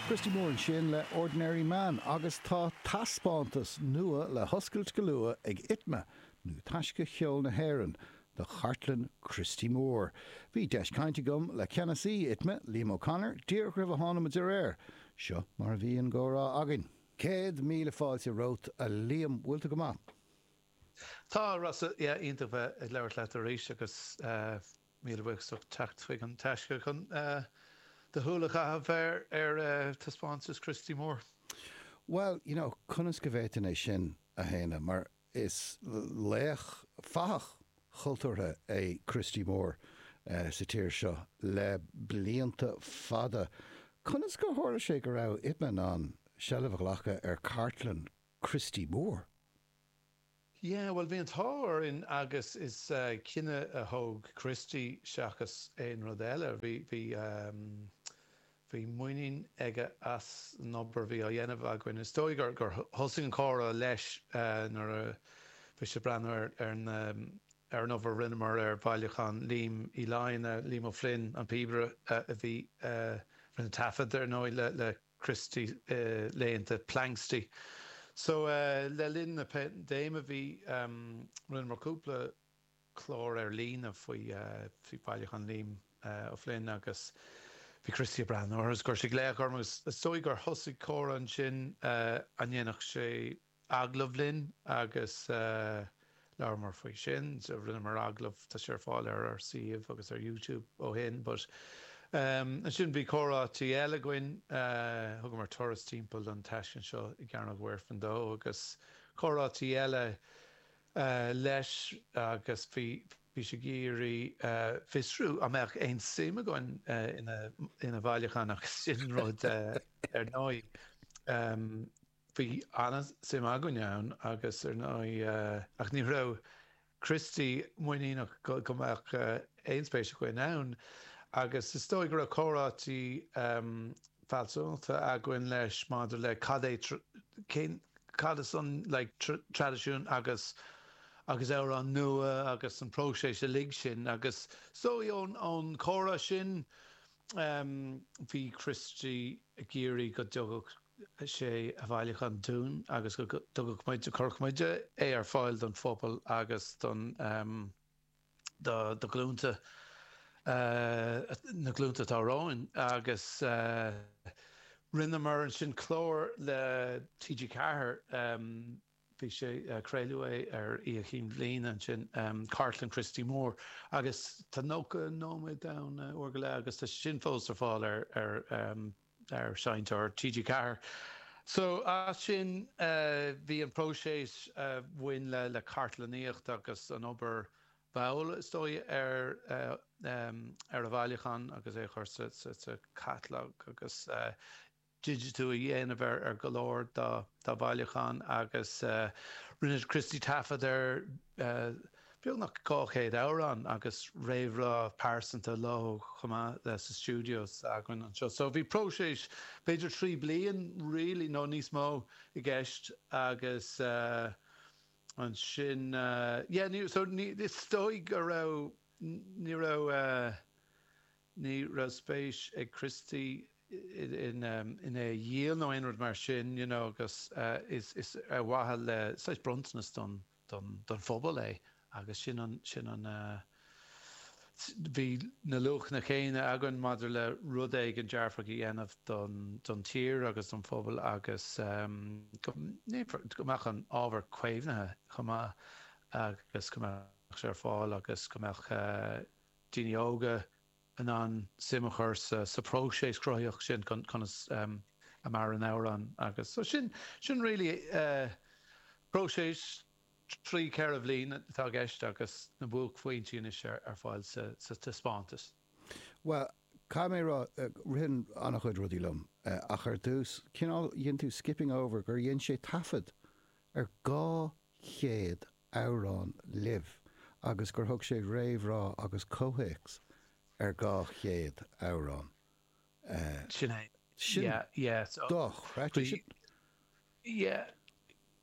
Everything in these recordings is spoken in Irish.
Christy Moore ansin le Ordinary Man agus tá taispeántas nua le hoscailt go luath ag Itma, nó Taisce Cheol na hÉireann, do chartlann Christy Moore. Bhí deis caint agam le ceannasaí Itma, Liam O'Connor, díreach roimh a tháinig muid ar aer. Seo mar a bhí an comhrá againn. Céad míle fáilte romhat, a Liam. Bhfuil tú go maith? Tá, Rossa. Yeah, iontach bheith ag labhairt leat arís agus eh. Níl uait ach teacht chuig an Taisce chun do shúil a chaitheamh ar taispeántas Christy Moore. Bhuel, you know, conas go bhféadfainn é sin a shéanadh mar is laoch, fathach chultúrtha é Christy Moore sa tír seo le blianta fada. Conas gur tharla sé go raibh Itma in ann seilbh a ghlacadh ar chartlann Christy Moore? Yeah, bhuel, bhí an t-ádh orainn agus is cinneadh a thóg Christy seachas aon rud eile. Bhí, bhí, em, bhí muinín aige as an obair a bhí á dhéanamh againn. Is dóigh gur, gur thosaigh an comhrá leis nuair a bhí sé ag breathnú ar, ar na, ar an obair a rinneamar ar Bhailiúchán Liam Uí Fhloinn, Liam Ó Floinn, an píobaire a bhí, a rinne taifead, ar ndóigh, le, le. Christy i laethanta Planxty. So le linn na paindéime bhí, rinneamar cúpla clár ar líne faoi Bhailiúchán Liam O'Flynn agus bhí Christy ag breathnú orthu is chuir sé glaoch orm agus is dóigh gur thosaigh comhrá ansin an ndéanfadh sé, agallamh linn agus labhramar faoi sin. Rinneamar agallamh, tá sé ar fáil ar ár suíomh agus ar YouTube ó shin but ansin bhí comhráite eile againn, thugamar turas timpeall don taisclann seo i gCearnóg Mhuirfean dó agus comhráite eile leis agus bhí bhí sé ag iarraidh fiosrú an mbeadh aon suim againn ina bhailiúchán agus sin rud ar ndóigh. Bhí an-suim againn ann agus ar ndóigh, ach ní raibh Christy muiníneach go mbeadh aon spéis againn ann agus is dóigh go raibh comhráití fealsúnachta againn leis maidir le cad é, cén, cad is ann, like, traidisiún agus agus amhráin nua agus an próiseas uilig sin agus is dóigh ón chomhrá sin, bhí Christy ag iarraidh go dtagadh. sé a bhailiúchán dúinn agus go dtabharfadh muid, go gcuirfeadh muid, é ar fáil don phobal agus do na glúnta, na glúnta atá romhainn agus rinneamar ansin clár le TG Ceathair, bhí sé, craoladh é ar Oíche Chinn Bhliana ansin, Cartlann Christy Moore agus tá 90 nóiméad ann, uair go leith agus tá sé sin fós ar fáil ar. ar Sheinnteoir TG4. So as sin bhí an próiseas a bhain le cartlannaíocht agus an obair mhall is dóigh ar a bhailiúchán agus é a chur sa chatalóg agus digitiú a dhéanamh ar go leor dá bhailiúchán agus rinne Christy taifead ar beagnach 200 amhrán agus réamhrá pearsanta leo chomh maith sa stiúideo s'againn anseo. So bhí próiseas b'fhéidir trí bliain really nó níos mó i gceist agus ansin yeah ní so is dóigh go raibh ní raibh ní raibh spéis ag Christy in in é a dhíol nó aon rud mar sin you know agus is is ar mhaithe le saghas bronntanas don don phobal é agus sin an, sin an, bhí na luachanna céanna againn maidir le rud éigin dearfach a dhéanamh don, don tír agus don phobal agus go ndéanfar, go mbeadh an ábhar caomhnaithe chomh maith agus go mbeadh sé ar fáil agus go mbeadh daoine óga, in ann suim a chur sa phróiseas cruthaitheach sin, conas a maireann amhrán agus so sin, sin really próiseas trí cheithre bhliain atá i gceist agus na buaicphointí anois ar fáil sa taispeántas. Bhuel, caithfidh mé a rá, ritheann an-chuid rudaí liom ach ar dtús, cineál, dhein tú skipping over gur dhein sé taifead ar 200 amhrán libh agus gur thug sé réamhrá agus comhthéacs ar dhá chéad amhrán. Sin é. Sin dochreidte. Sin. Yeah.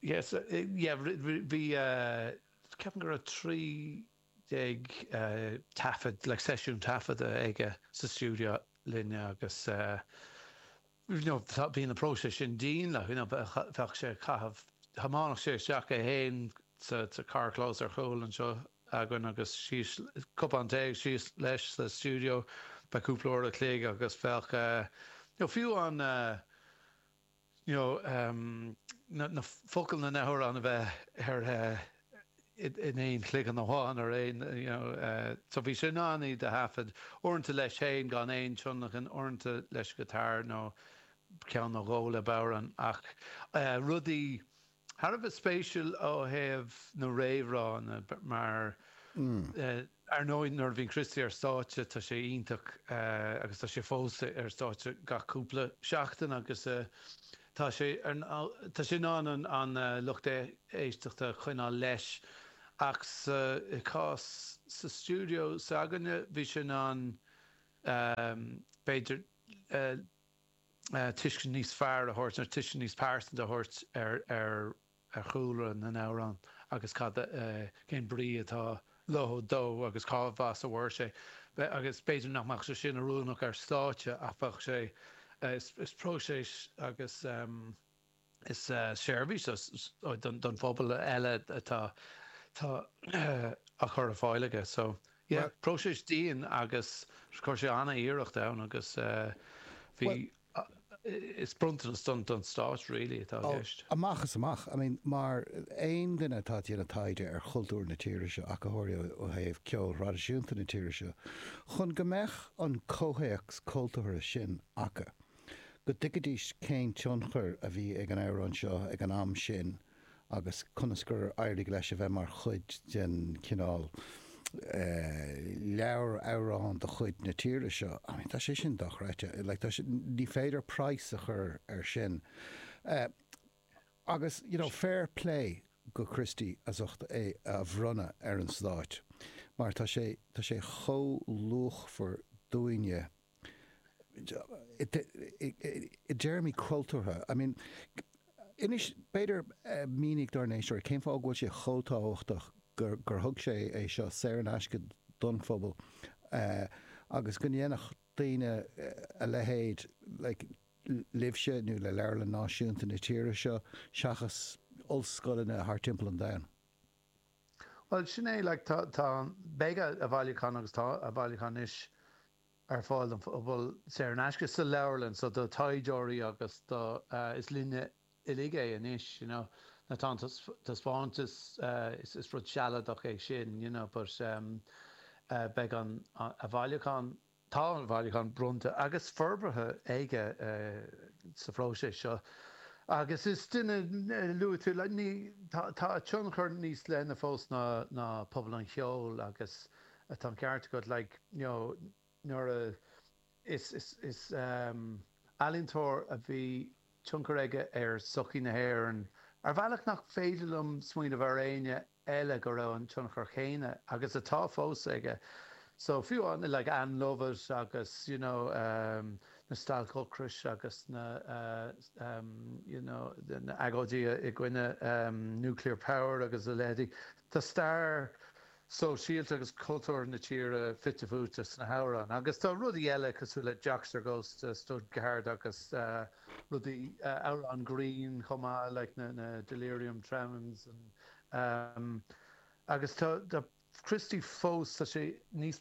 Yeah, so, yeah, bhí, ceapaim go raibh trí déag taifead, like, seisiún taifead aige sa stiúideo linn agus, bhí na próisis sin dian like, bheadh sé ag caitheamh, thiomáineadh sé isteach é féin sa charrchlós ar chúl anseo againn agus síos, cupán tae agus síos leis sa stiúideo, b'fhéidir cúpla uair a chloig agus bheadh fiú an you know na focail na na hamhráin a bheith ar in aon chloigeann amháin ar aon nós So bhí sé in ann iad a thaifead, uaireanta leis féin gan aon tionlacan, uaireanta leis an guitar nó ceann nó dhó le bodhrán ach rudaí thar a bheith spéisiúil ó thaobh na réamhrá mar Ar ndóigh, nuair a bhíonn Christy ar stáitse, tá sé iontach agus tá sé fós ar stáitse gach cúpla seachtain agus tá sé tá sé in ann an lucht éisteachta a choinneáil leis ach sa chás sa stiúideo s'againne, bhí sé in ann, b'fhéidir, tuiscint níos fearr a thabhairt, tuiscint níos pearsanta a thabhairt ar. ar chúlra na n-amhrán agus cad, cén brí atá leo, dó agus cad as a bhfuair sé. Agus b'fhéidir nach mbeadh sé sin oiriúnach ar stáitse ach bheadh sé, is próiseas agus is seirbhís don phobal eile atá atá á chur ar fáil aige. So, yeah, próiseas dian agus chuir sé an-iarracht ann agus bhí Is bronntanas don Stáit really atá i gceist. Amach is amach. I mean, mar aon duine atá ag déanamh taighde ar chultúr na tíre seo, ach go háirithe ó thaobh ceoil thraidisiúnta na tíre seo, chun go mbeadh an comhthéacs cultúrtha sin acu, go dtuigfidís cén tionchar a bhí ag an amhrán seo ag an am sin, agus conas gur éirigh leis a bheith mar chuid den chineál leabhar amhrán de chuid na tíre seo, I mean tá sé sin dochreidte, like tá sé, ní féidir praghas a chur air sin. Agus you know fair play do Christy as ucht é a bhronnadh ar an Stát mar tá sé, tá sé chomh luachmhar dúinne. i dtéarmaí cultúrtha, I mean, inis, b'fhéidir, mínigh dár n-éisteoirí cén fáth go bhfuil sé chomh tábhachtach gur, gur thug sé é seo saor in aisce don phobal agus go ndéanfadh daoine a leithéid, like, libhse nó le Leabharlann Náisiúnta na tíre seo seachas ollscoileanna thart timpeall an domhain. Bhuel, sin é, like, tá, tá, beidh a bhailiúchán agus tá a bhailiúchán anois ar fáil don phobal saor in aisce sa leabharlann, so do thaighdeoirí agus do. is linne uilig é anois, you know now tá an taispeántas, is rud sealadach é sin, you know but beidh an a bhailiúchán, tá a bhailiúchán bronnta agus forbartha aige sa phróiseas seo agus is duine, luaigh tú le, ní, tá a tionchar níos leithne fós ná pobal an cheoil agus. Tá an ceart agat, like, you know, nuair a, is, is, is ealaíontóir a bhí tionchar aige ar sochaí na hÉireann ar bhealach nach féidir liom smaoineamh ar éinne eile go raibh an tionchar chéanna, agus atá fós, aige. So, fiú amháin, like, Ann Lovett agus, you know, na stailc ocrais agus na, you know, na agóidí i gcoinne nuclear power agus a leithéidí, tá stair. sóisialta agus cultúrtha na tíre fite fuaite sna hamhráin. Agus tá rudaí eile cosúil le Joxer Goes to Stuttgart agus rudaí, amhráin grinn chomh maith like na Delirium Tremens agus tá Christy fós, tá sé níos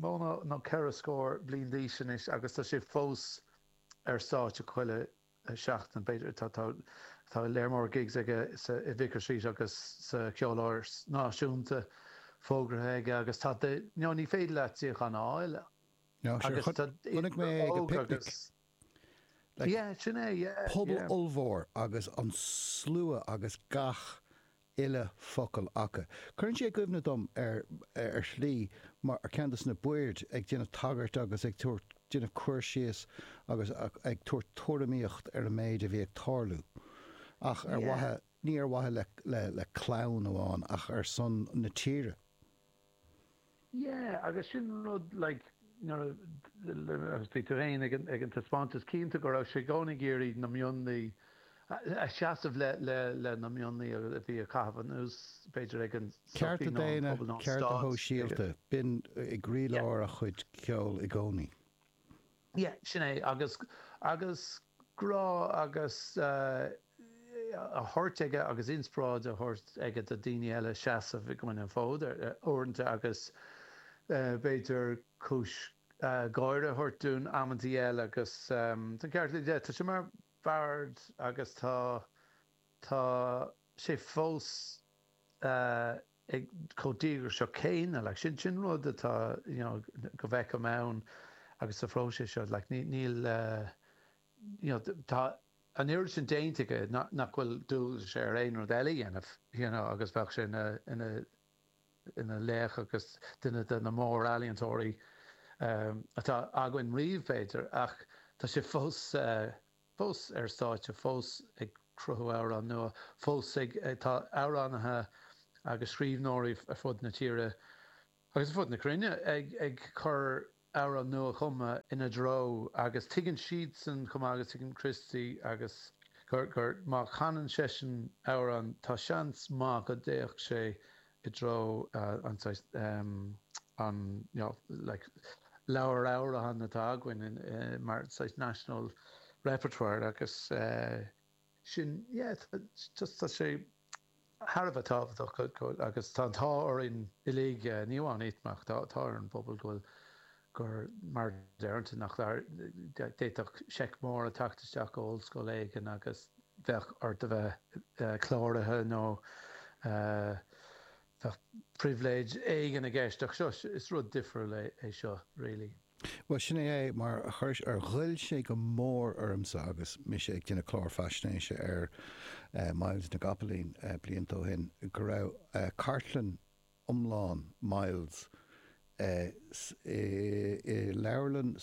mó ná ceithre scór bliain d'aois anois agus tá sé fós ar stáitse chuile seachtain, b'fhéidir. Tá lear mór gigs aige sa, i Vicar Street agus sa Cheoláras Náisiúnta fógraithe aige agus tá de, no, ní féidir leat suíochán a fháil agus tá idir óg agus. Like, yeah, sin é, yeah, pobal yeah. ollmhór agus an slua agus gach uile focal acu. Cuireann sé i gcuimhne dom ar shlí mar ceann de sna boird ag déanamh tagairt agus ag tabhairt déanamh cur síos agus ag tabhairt tuairimíocht ar an méid a bhí ag tarlú ach ar mhaith, ní ar mhaithe le clann amháin ach ar son na tíre. Yeah, agus sin rud, like, nuair a, agus bhí tú féin ag an taispeántas, cinnte go raibh sé i gcónaí ag iarraidh na mionlaigh, a seasamh le, le, le na mionlaigh a bhí á chaitheamh anuas, b'fhéidir, ag an sochaí nó an pobal nó an stát. Cearta daonna, cearta shóisialta, b'in ag croílár a chuid ceoil i gcónaí. Yeah, sin é, agus, agus grá agus eh, a thabhairt aige agus inspioráid a thabhairt aige do daoine eile seasamh an fód ar, eh, uaireanta agus eh, b'fhéidir cúis eh, gáire a thabhairt dúinn amantaí eile agus ehm, tá an ceart agat, tá sé mar bhard agus tá, tá sé fós eh, ag chomh díograiseach céanna. Like, sin, sin rud atá, you know, go bhfeicim ann agus sa phróiseas seo. Like, ní, níl eh, you know, tá an oiread sin déanta aige nach, nach bhfuil dualgas air aon rud eile a dhéanamh, you know, agus bheadh sé ina, ina, ina laoch agus duine de na mórealaíontóirí, em, atá againn riamh, b'fhéidir, ach tá sé fós eh, fós ar stáitse, fós ag cruthú amhráin nua, fós ag. Tá amhránaithe agus scríbhneoirí ar fud na tíre agus ar fud na cruinne ag cur amhráin nua-chumtha ina threo agus tuigeann siadsan chomh maith agus tuigeann Christy agus gur, gur má chanann seisean amhrán tá seans maith go dtéadh sé i dtreo an saghas an you know like leabhair amhrán atá againn mar saghas national repertoire agus sin é yeah just tá sé thar a bheith tábhachtach agus tá an t-ádh orainn uilig ní amháin iad ach tá ar an bpobal go bhfuil gur mar a déarfá, d'fhéadfadh seic mór a theacht isteach ó ollscoil éigin agus bheadh ort a bheith cláraithe nó bheadh pribhléid éigin i gceist ach seo, is rud difriúil é seo really. Bhuel, sin é é, mar ghoill sé go mór ormsa agus mise ag déanamh clár faisnéise ar Myles na gCopaleen blianta ó shin, go raibh cartlann, iomlán Myles i leabharlann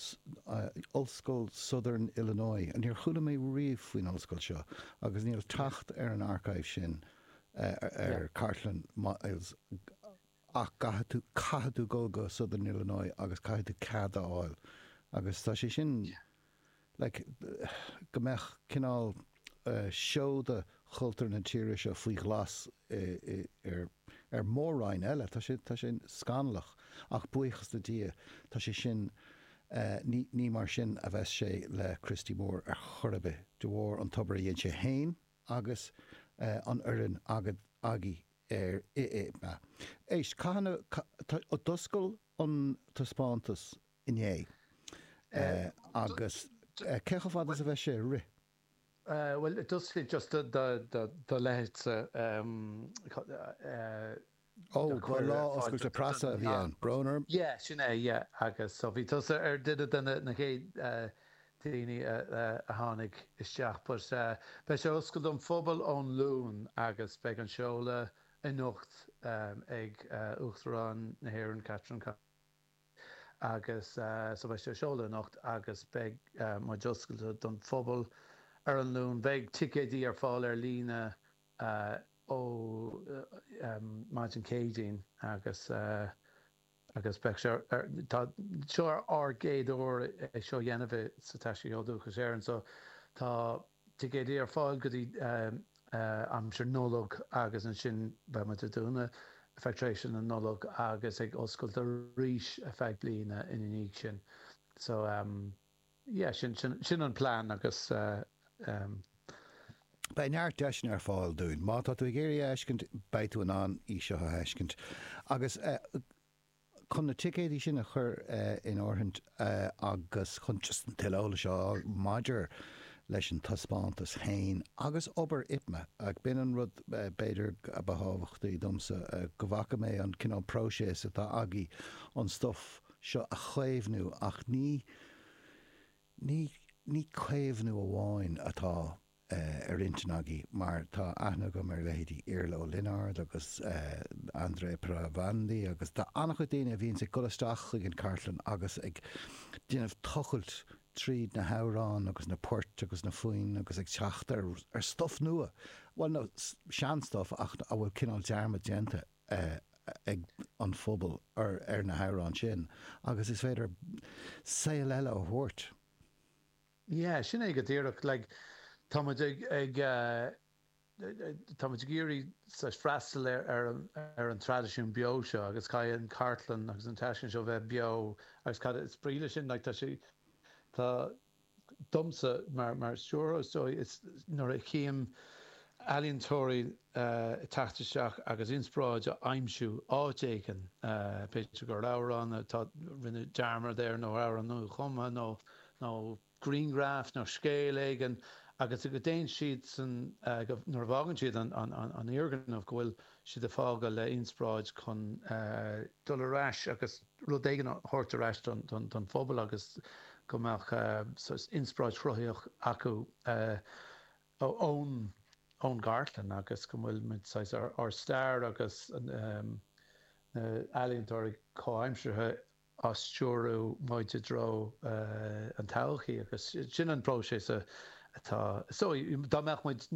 Ollscoil Southern Illinois. Níor chuala mé riamh faoin ollscoil seo agus níl teacht ar an archive sin ar chartlann Myles ach go gcaithfidh tú dul go Southern Illinois agus caithfidh tú cead a fháil agus tá sé sin like, go mbeadh cineál seoda chultúr na tíre seo faoi ghlas ar Mhór-Roinn eile, tá sé, tá sé scannalach ach buíochas le Dia tá sé sin, ní, ní mar sin a bheas sé le Christy Moore ar chor ar bith, de bharr an obair a dhein sé féin agus an fhoireann agad, agaibh ar ITMA. Éist, cathain a d'oscail an taispeántas inné. Agus cé chomh fada is a bheas sé ag rith? Bhuel, d'oscail sé just do leithéidse Cormac. Ó, ba lá oscailte preasa a bhí ann, tá brón orm. Yeah, sin é, yeah. Agus so bhí tusa ar dhuine de na chéad daoine a tháinig isteach but beidh sé oscailte don phobal ón Luan agus beidh an seoladh anocht ag Uachtarán na hÉireann, Catherine Connolly. agus so beidh sé á sheoladh anocht agus beidh muid oscailte don phobal ar an Luan. Beidh ticéidí ar fáil ar líne ó maidin Céadaoin agus agus beidh sé ar, tá, seo ár gcéad uair é seo a dhéanamh i, sa Taisce Cheol Dúchais Éireann so tá, ticéidí ar fáil go dtí aimsir Nollag agus ansin beidh muid ag dúnadh ar feadh tréimhse na Nollag agus ag oscailt arís ar feadh bliana ina dhiaidh sin so yeah sin sin an plean agus beidh neart deiseanna ar fáil dúinn má tá tú ag iarraidh é a fheiscint beidh tú in ann í seo a fheiscint agus Chun na ticéidí sin a chur in áirithe agus chun just tuilleadh eolais a fháil maidir leis an taispeántas féin agus obair IPMA, ach b'in an rud b'fhéidir a ba thábhachtaí domsa, go bhfaca mé an cineál próiseas atá agaibh an stuif seo a chaomhnú ach ní caomhnú amháin atá ar intinn agaibh mar tá aithne agam ar leithéidí Iarla Ó Lionáird agus Andrea Palandri agus tá an-chuid daoine a bhíonns ag dul isteach chuig an chartlann agus ag déanamh tochailt tríd na hamhráin agus na poirt agus na foinn agus ag teacht ar stuif nua, bhuel nó seanstuif ach a bhfuil cineál dearmad déanta ag an phobal ar na hamhráin sin agus is féidir saol eile a thabhairt. Yeah, sin é go díreach. Like, tá muid ag, ag eh, tá muid ag iarraidh saghas freastal ar, ar an, ar an traidisiún beo seo agus caithfidh an chartlann agus an taisclann seo bheith beo agus cad is brí leis sin, like, tá sé, tá, domsa mar, mar stiúrthóir is dóigh, is nuair a tchím ealaíontóirí eh ag teacht isteach agus inspioráid á aimsiú áit éigin, eh b'fhéidir gur amhrán atá ann, rinneadh dearmad air nó amhrán nuachumtha nó, nó grianghraf nó scéal éigin agus go dtéann siad ansan, nuair a bhfágann siad an foirgneamh, go bhfuil siad ag fágáil le hinspioráid chun. dul ar ais agus rud éigin a thabhairt ar ais don phobal agus go mbeadh saghas inspioráid chruthaíoch acu ón gcartlann agus go bhfuil muid saghas ár stair agus na ealaíontóirí comhaimseartha, ag stiúradh muid i dtreo an todhchaí agus sin an próiseas atá, is dóigh, dá mbeadh muid,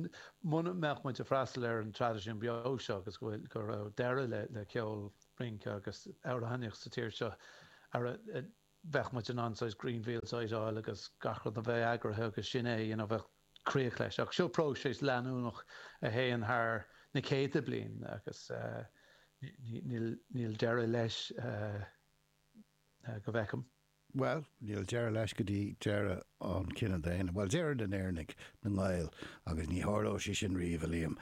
muna mbeadh muid ag freastal ar an traidisiún beo seo agus go bhfuil, go raibh deireadh le ceol, rince agus amhránaíocht sa tír seo, ara, bheadh muid in ann saghas greenfield site a fháil agus gach rud a bheith eagraithe agus sin é, you know, bheadh. críoch leis. Ach seo próiseas leanúnach a théann thar na céadta bliain agus níl deireadh leis go bhfeicim. Bhuel, níl deireadh leis go dtí deireadh an chine daonna, bhuel, deireadh na nÉireannaigh, na nGael, agus ní tharlóidh sé sin riamh, a Liam.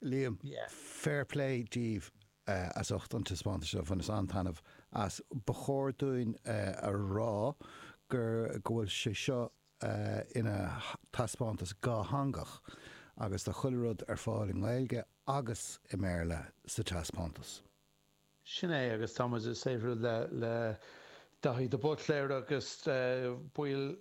Liam, fair play daoibh as ucht an taispeántais seo, bhaineas an-taitneamh as. Ba chóir dúinn a rá go bhfuil sé seo ina thaispeántas dhátheangach agus tá chuile rud ar fáil i nGaeilge agus i mBéarla sa taispeántas. Sin é agus tá muid ag saothrú le le Daithí de Buitléir agus baill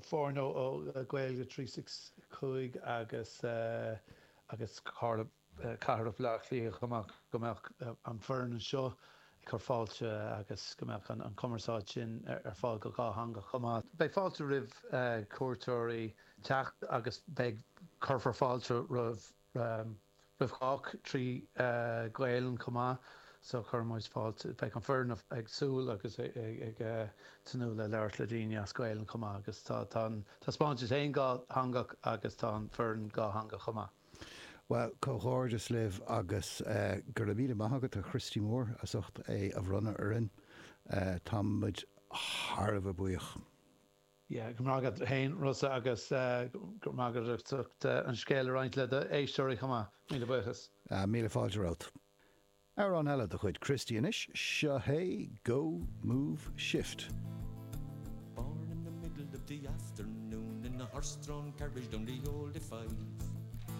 foirne ó Gaeilge 365 agus agus Carla Cathrach Bhleá Cliath chomh maith, go mbeadh an foireann anseo ag cur fáilte agus go mbeadh an chumarsáid sin ar fáil go dhátheangach chomh maith. Beidh fáilte roimh chuairteoirí teacht agus beidh, cuirfear fáilte roimh chách trí Ghaelainn chomh maith so cuirimid fáilte, beidh an foireann ag súil agus ag tnúth le labhairt le daoine as Gaelainn chomh maith agus tá an taispeántas an-dhátheangach agus tá an foireann dhátheangach chomh maith. Bhuel, comhghairdeas libh agus go raibh míle maith agat do Christy Moore as ucht é a bhronnadh orainn. Tá muid thar a bheith buíoch. Yeah, go raibh maith agat féin, Rossa, agus go raibh maith agat as ucht an scéal a roinnt le do éisteoirí chomh maith. Míle buíochas. Ah, míle fáilte romhat. Amhrán eile de chuid Christy anois, seo hé Go Move Shift. Born in the middle of the afternoon in a horse-drawn carriage on the old A5.